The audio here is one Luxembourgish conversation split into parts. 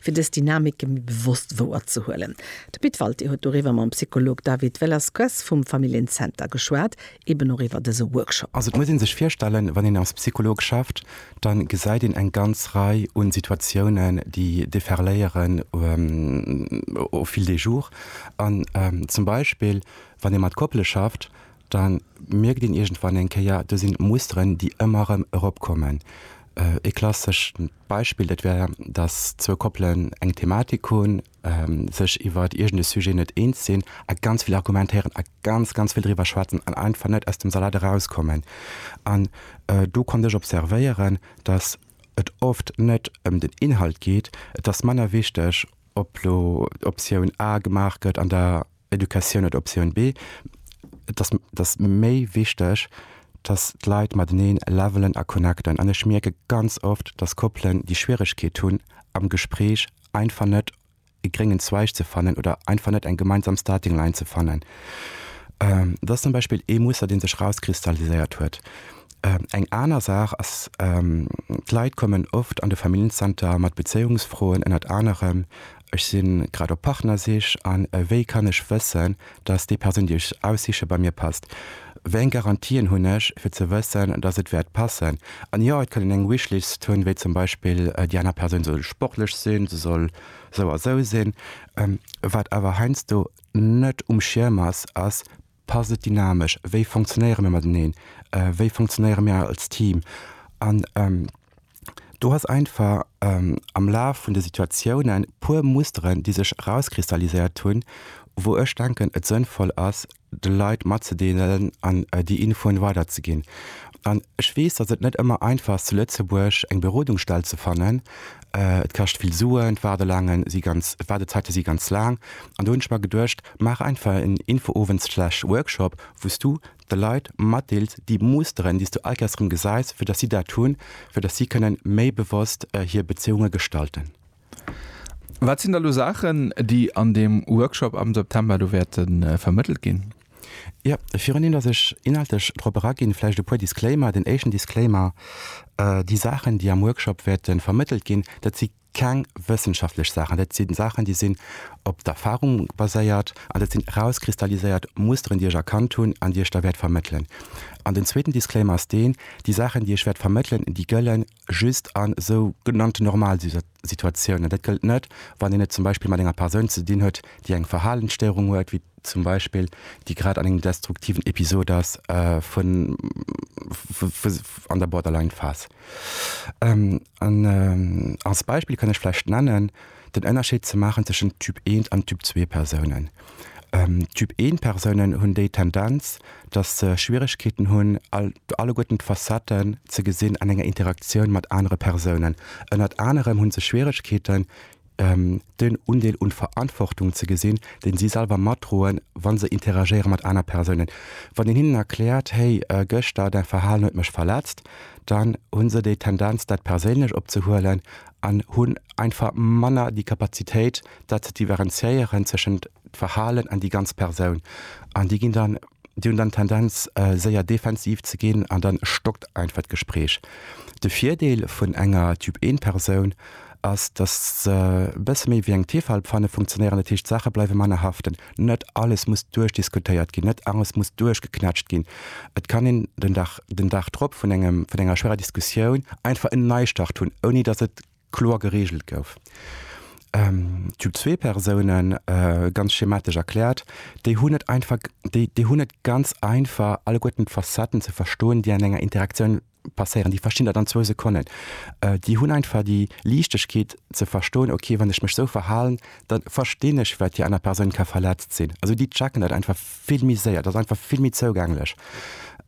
Fir dës Dynamike méi bewosst wouerzehuelen. De Pit Walté huet doriwwer mam Psycholog David Velasquez vum Familljen-Zenter geschwat, eben och iwwer dëse Workshop. Also et muss ee sech virstellen, wann een als Psycholog schafft, da gesäit een eng ganz Rei u Situatiounen, déi deferléieren au fil des jours. An zum Beispill wann ee mat Koppele schafft, da mierkt een iergendwann eng Kéier, do sinn Musteren, déi ëmmer erëm eropkommen. Ee klassesch Beispill, dat wär, datt zwou Koppelen eng Thematik hunn, sech iwwer iergend e Sujet net eens sinn a ganz vill argumentéieren a ganz, ganz vill driwwer schwätzen an einfach net aus dem Salat erauskommen. An do konnt ech observéieren, datt et oft net ëm den Inhalt geet, et ass manner wichteg, ob elo Optioun A gemaach gëtt an der. Educatioun oder Optioun B, Et ass, et ass méi wichteg, dass d'Leit mateneen levelen a connecten. An ech mierke ganz oft, dass Koppelen déi Schwieregkeet hunn, am Gespréich einfach net e gréngen Zweig ze fannen oder einfach net eng gemeinsam Starting Line ze fannen. Dat ass zum Beispill ee Muster, dee sech erauskristalliséiert huet. Eng aner Saach ass, d'Leit kommen oft an de Familljenzenter mat Bezéiungsfroen, ënnert anerem Ech si grad op Partnersich a wéi kann ech wëssen, dass déi Persoun, déi ech aussiche, bei mir passt? Wéi eng Garantien hunn ech, fir ze wëssen, dass et wäert passen? An jo, et kann een eng Wishlist hunn, wéi zum Beispill, déi aner Persoun soll sportlech sinn, se soll sou a sou sinn. Wat awer heiansdo net um Schierm ass, ass, Passt et dynamesch? Wéi funktionéiere mir mateneen? Wéi funktionéiere mir als Team? An do ass einfach am Laf vun de Situatiounen puer Musteren, déi sech erauskristalliséiert hunn, wou ech denken, et sënnvoll ass, de Leit matzedeelen an déi Infoen weiderzeginn. An ech weess, datt et net ëmmer einfach ass, zu Lëtzebuerg eng Berodungsstell ze fannen. Et kascht vill Suen, d'Waardelaange si ganz, d'Waardezäite si ganz laang. An do hunn ech mer geduecht, Maach einfach en Infoowend slash Workshop wou s du de Leit matdeels déi Musteren déi s du all Keiers rëm gesäis, fir datt si dat hunn, fir datt si kënnen méi bewosst hir Bezéiunge gestalten. Wat sinn da lo Saachen déi an deem Workshop am September do wäerte vermëttelt ginn? Jo, viruneen datt ech inhaltlech drop eraginn, vläicht e puer Disclaimer. Den éischten Disclaimer, Déi Saachen déi am Workshop wäerte vermëttelt ginn, dat si keng wëssenschaftlech Saachen, dat si Saachen, déi sinn op d'Erfarung baséiert an dat sinn erauskristalliséiert Musteren, déi ech erkannt hunn an déi ech da wäert vermëttelen. An den zweeten Disclaimer ass deen, Déi Saachen, déi ech wäert vermëttelen, déi gëlle just a sou genannten Normalsituatiounen. Dat gëllt net, wann een et zum Beispill mat enger Persoun ze dinn huet, déi eng Verhalensstéierung huet, wéi zum Beispill déi grad an engem destruktiven Episod ass vun an der Borderline-Phas. An als Beispill kann ech vläicht nennen, den Ënnerscheed ze maachen tëschent Typ I an Typ ii Persounen. Typ I Persounen hunn déi Tendenz, datt se Schwieregkeeten hunn, all, alleguerten d'Facetten ze gesinn an enger Interaktioun mat anere Persounen. Ënnert anerem hu se Schwieregkeeten, den Undeel un Verantwortung ze gesinn, deen si selwer matdroen, wann se interagéieren mat aner Persounen. Wann een hinnen erkläert, hey, gëschter däi Verhalen huet mech verletzt, dann hunn se déi Tendenz dat perséinlech op ze huelen an hunn einfach manner déi Kapazitéit dat ze diverenziéieren tëschent Verhalen an déi ganz Persoun. An déi ginn dann, déi hunn dann Tendenz séier defensiv ze ginn an dann stockt einfach d'Gespräch. De Virdeel vun enger Typ-1-Persoun ass, datt se e bësse méi wéi eng Tefalpfanne funktionéieren. Dat heescht, d'Saache bleiwe manner haften. Net alles muss duerchdiskutéiert ginn, net alles muss duerchgeknätscht ginn. Et kann een den Dag, den Dag drop vun engem, vun enger schwerer Diskussioun einfach en Neistart hunn, ouni datt et kloer gereegelt gouf. Typ zwee Persounen, ganz schematesch erkläert, déi hunn et einfach, déi, déi hunn et ganz einfach, alleguerten d'Facetten ze verstoen, déi an enger Interaktioun passéieren, déi verstinn dat an zwou Sekonnen. Déi hunn einfach déi Liichtegkeet ze verstoen, okay, wann ech mech esou verhalen, da verstinn ech, wat déi aner Persoun ka verletzt sinn. Also déi checken dat einfach vill méi séier, dat ass einfach vill méi zougänglech.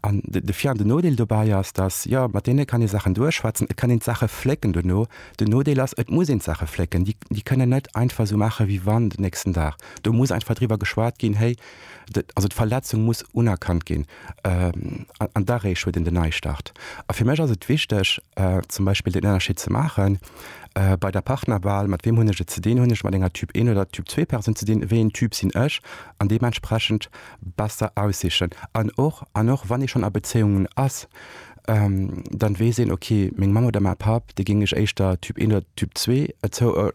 An de Vir an den Nodeel dobäi ass, dass, jo, mat deene kann ee Saachen duerchschwätzen, et kann een d'Saache flécken dono. Den Nodeel ass, et muss een d'Saache flécken. Déi kënnen net einfach esou maachen, wéi wann, den nächsten Dag. Do muss einfach driwwer geschwat ginn, héi, Also d'Verletzung muss unerkannt ginn an da réischt huet een den Neistart. A fir mech ass et wichteg, zum Beispill den Ënnerscheed ze maachen bei der Partnerwahl, mat weem hunn ech et ze dinn, hunn ech mat enger Typ een oder Typ zwee Persoun ze dinn, wéi een Typ sinn ech, an deementsprechend besser aussichen. An och, an och wann ee schonn a Bezéiungen ass, dann weess een, okay, meng Mamm oder mäi Papp, déi géing ech éischter Typ een oder Typ zwee zouuerdnen,